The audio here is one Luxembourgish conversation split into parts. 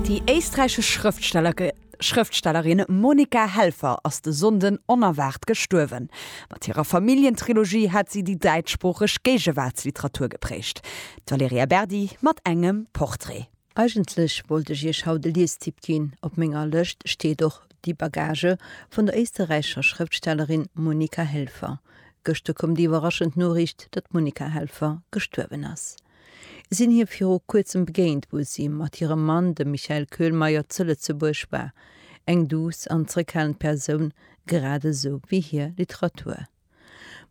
Déi éisträichesch Schrëftstellerin Monika Helfer ass de Sonnden onerwaart gestuerwen. Mat hirer Familljentrilogie hat si déi däitschsproocheg Géigewaartsliteratur geprägt. D'Valerija Berdi mat engem Portrait. Eigentlech wollt ech iech haut e Liestipp ginn. Op menger Lëscht steet och Die Bagage vun der éisterräichescher Schrëftstellerin Monika Helfer. Gëschter koum déi iwwerraschend Noriicht, datt d'Monika Helfer gestuerwen ass. sinn hir viru kuerzem begéint, wou si mat hirem Mann, dem Michael Köhlmeier, zu Lëtzebuerg war. Eng duuss an zeréckhalend Persoun, grad esou wéi hir Literatur.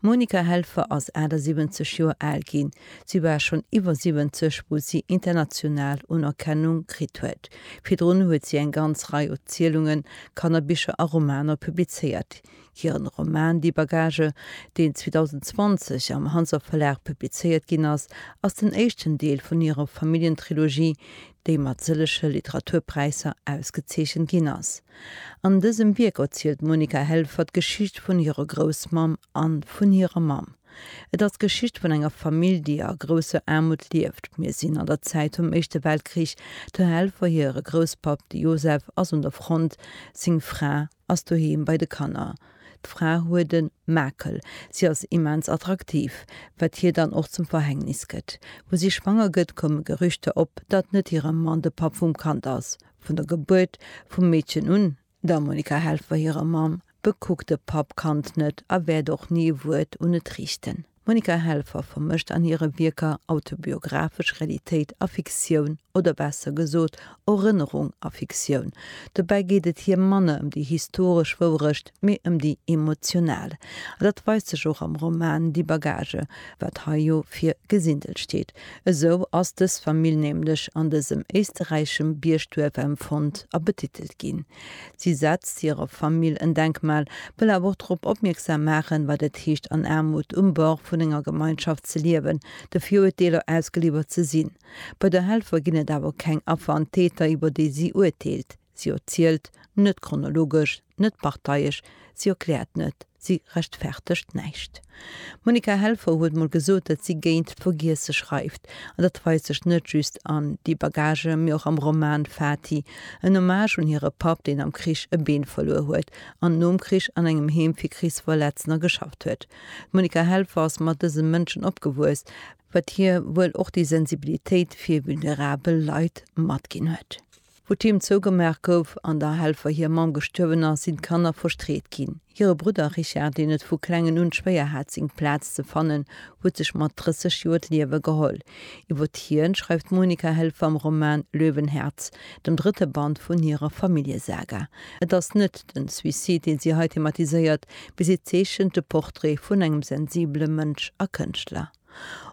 D'Monika Helfer ass 78 Joer al ginn. Si war schonn iwwer 70, wou si international Unerkennung kritt huet. Virdrun huet si eng ganz Rei Erzielungen, Kannerbicher a Romaner publizéiert. Hiren Roman Die Bagage, deen 2020 am Hanser Verlag publizéiert ginn ass, ass den éischten Deel vun hirer Familljentrilogie, déi mat sëllege Literaturpräisser ausgezeechent ginn ass. An dësem Wierk erzielt d'Monika Helfer d'Geschicht vun hirer Groussmamm an vun hirer Mamm. Et ass d'Geschicht vun enger Famill, déi a grousser Aarmut lieft. Mir sinn an der Zäit vum Éischte Weltkrich. Der Helfer hire Grousspapp, de Josef, ass un der Front, seng Fra ass doheem bei de Kanner. D'Fra huet e Makel, si ass immens attraktiv, wat hir dann och zum Verhängnis gëtt. Wou si schwanger gëtt, koume Gerüchter op, datt net hire Mann de Papp vum Kand ass. Vun der Gebuert vum Meedchen un, der Monica Helfer hirer Mamm, bekuckt de Papp d'Kand net a wäert och ni e Wuert un et riichten. D'Monika Helfer vermëscht an hire Wierker autobiographesch Realitéit a Fiktioun, oder besser gesot, Erënnerung a Fiktioun. Dobäi geet et hir manner ëm déi historesch Wourecht, mee ëm déi emotional. A dat weist sech och am Roman Die Bagage, wat hei jo fir Gesindel steet. Esou ass dës Famill nämlech an dësem éisterräischem Biergduerf empfonnt a betitelt ginn. Si setzt hirer Famill en Denkmal, wëll awer och drop opmierksam maachen, wat et heescht an Aarmut um Bord vun enger Gemeinschaft ze liewen, de Viruerteeler ausgeliwwert ze sinn. Bei der Helfer ginn et awer keng Affer an Täter, iwwer déi si urteelt. Si erzielt net chronologesch, net parteiesch, si erkläert net. Si rechtfertegt näischt. D'Monica Helfer huet mol gesot, datt si géint Vergiesse schreift. An dat weist sech net just an Die Bagage, mee och am Roman Fati, en Hommage un hire Papp, deen am Krich e Been verluer huet an nom Krich an engem Heem fir Krichsverletzner geschafft huet. D'Monica Helfer ass mat dëse Mënschen opgewuess, wat hir wuel och déi Sensibilitéit fir vulnerabel Leit matginn huet. Wou d'Heem zougemaach gouf an der Helfer hir Mamm gestuerwen ass, sinn d'Kanner frustréiert ginn. Hire Brudder Richard, deen et vu klengen un schwéier hat seng Plaz ze fannen, huet sech mat 30 Joer d'Liewe geholl. Iwwert hien schreift d'Monika Helfer am Roman Löwenherz, dem drëtte Band vun hirer Familljesaga. Et ass net den Suicide, deen si hei thematiséiert, mee si zeechent de Portrait vun engem sensibele Mënsch a Kënschtler.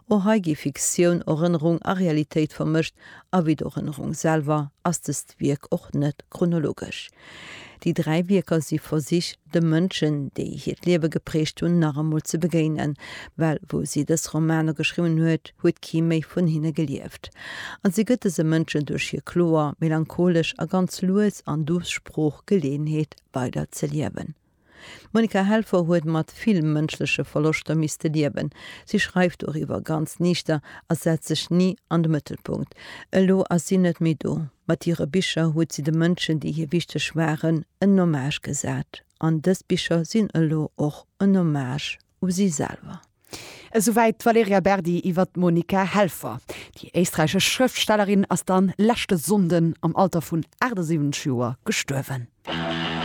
O hei gi Fiktioun, Erënnerung a Realitéit vermëscht a wéi d'Erënnerung selwer ass dëst Wierk och net chronologesch. Déi dräi Wierker si Versich, de Mënschen, déi hiert Liewe geprägt hunn, nach emol ze begéinen, well wou si dës Romaner geschriwwen huet, huet kee méi vun hinne gelieft. A si gëtt dëse Mënschen duerch hir kloer, melancholesch a ganz lues an duuss Sprooch Geleeënheet, weider ze liewen. D'Monica Helfer huet mat vill mënschleche Verloschter misste liewen. Si schreift doriwwer ganz niichter a setzt sech ni an de Mëttelpunkt. Elo ass si net méi do. Mat hire Bicher huet si de Mënschen, déi hir wichteg waren, en Hommage gesat. An dës Bicher sinn elo och en Hommage u si selwer. Esouwäit d'Valerija Berdi iwwer d'Monica Helfer. Déi éisträichesch Schrëftstellerin ass dann leschte Sonnden am Alter vun 78 Joer gestuerwen.